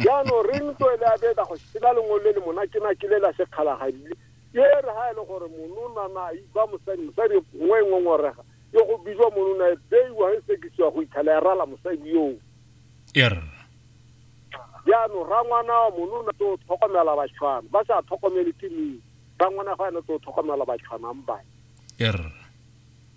jaanong re ntlo e le abeta go sena lengwe le le monakenake le la sekgalagadile e re ga e le gore mononana a iba mosadi mosadi nngwe e ngongorega yo go bijwa monona e beiwa e sekisiwa go itlhela e rala mosadi yoo er jaanong rangwana wa monona tse o tlhokomela batshwana ba sa tlhokomele ke meng rangwana ga ene tse o tlhokomela batshwanang bane er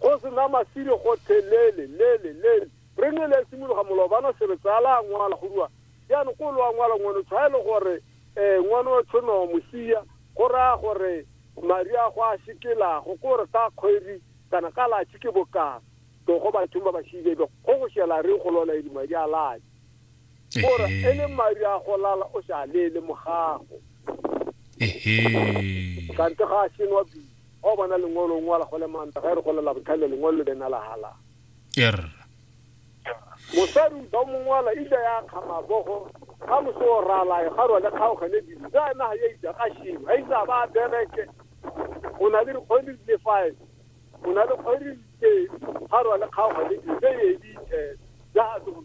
Go se na masire gothe lele, lele, lele. Re ne le simologa molobana se re tsaya la ngwala go rua. Jaanong ko lo a ngwala ngwano tshwae le gore eh ngwano o tshono mosia go raya gore mari a go a shikelago ko re ka kgwedi kana ka latshi ke bokana. Togo bathong ba ba shibebe go go shela re go lola e di madi a latshi. gore e le madi a go lala o sa lele mogago ehe kante ga a senwa bi ga o bona lengwelo ngwala go le manta ga e re go lela botlhale lengwelo le bena la hala er mosadi o ba mongwala ile ya kgama bogo ga moso o ralae ga rwa le kgaogane dilo ja ena ga ya itsa ga shimo ga itsa ba bereke o na le dikgwedi di le five o na le kgwedi di pedi ga rwa le kgaogane dilo ja e editse ja a tlo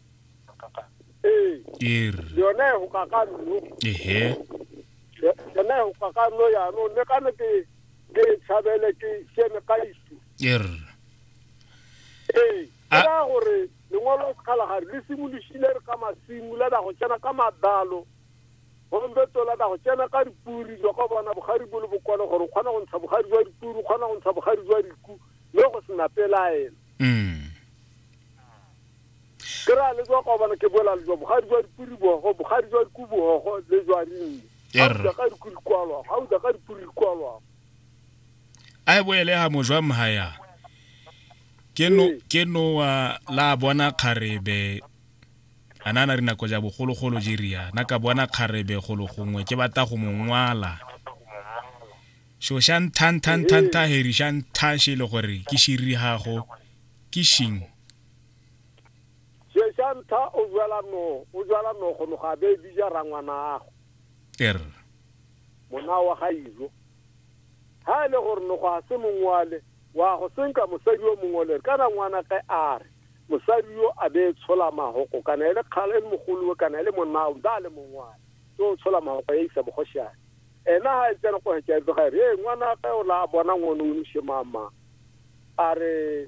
ee e re yone e goka ka nno ehe Yo- yone e goka ka nno yanong mme ka ne ke ke e tshabele ke kene ka isu e re ee ke A- raya gore lengwalo la sekgalagare le simolosile re ka masimo la da go tsena ka madalo gombeto la da go tsena ka dipuri jwa ka bona bogari bo le bokone gore o kgona go ntsha bogari jwa dipuri o kgona go ntsha bogari jwa diku mme go sena pelaelo mm ke ra le jwa kwa bana ke bola le jwa bogadi jwa dipuri bogo bogadi jwa diku bogo le jwa rinne ga o ja ka diku dikwalwa ga o ja ka dipuri dikwalwa a e boele ha mojwa mhaya ke no ee. ke no wa la bona kgarebe ana na rina koja bogolo golo jeria na ka bona kgarebe golo gongwe ke bata go mongwala so sha ntha ntha ntha ntha heri sha ntha she le gore ke shiri hago ke shing Sesa ntha o jwala no o jwala no go no ga be bija rangwana ago. Er. Mona wa ga izo. Ha le gore no go a se mongwale wa go senka mosadi yo mongole ka na ngwana ge a re mosadi yo a be tshola mahoko kana ele kgale le mogolo kana ele monna o da le mongwale so tshola mahoko ya isa bogoshane ena ha e tsena go hetsa ga re ngwana ge o la bona ngwana o nshemama a re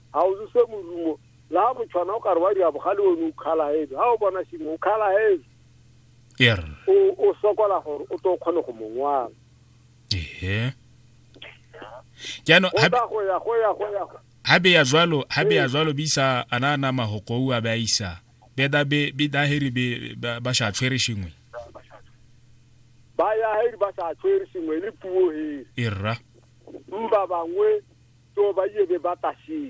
Ga o zose morumo. La ha motshwana o ka re wa dira bogale one o kgalahebe. Ha o bona sengwe o kgalahebe. Er. O o sokola gore o tlo kgone go mongwana. Ehe. Jaanong ha go ya go ya go ya. Ha be ya jwalo, ha be ya jwalo bisa ana ana mahoko a ba isa. Be da be be da heri be ba sha tshwere shingwe. Ba ya heri ba sa tshwere shingwe le puo he. Erra. Mba bangwe to ba ye be ba tashing.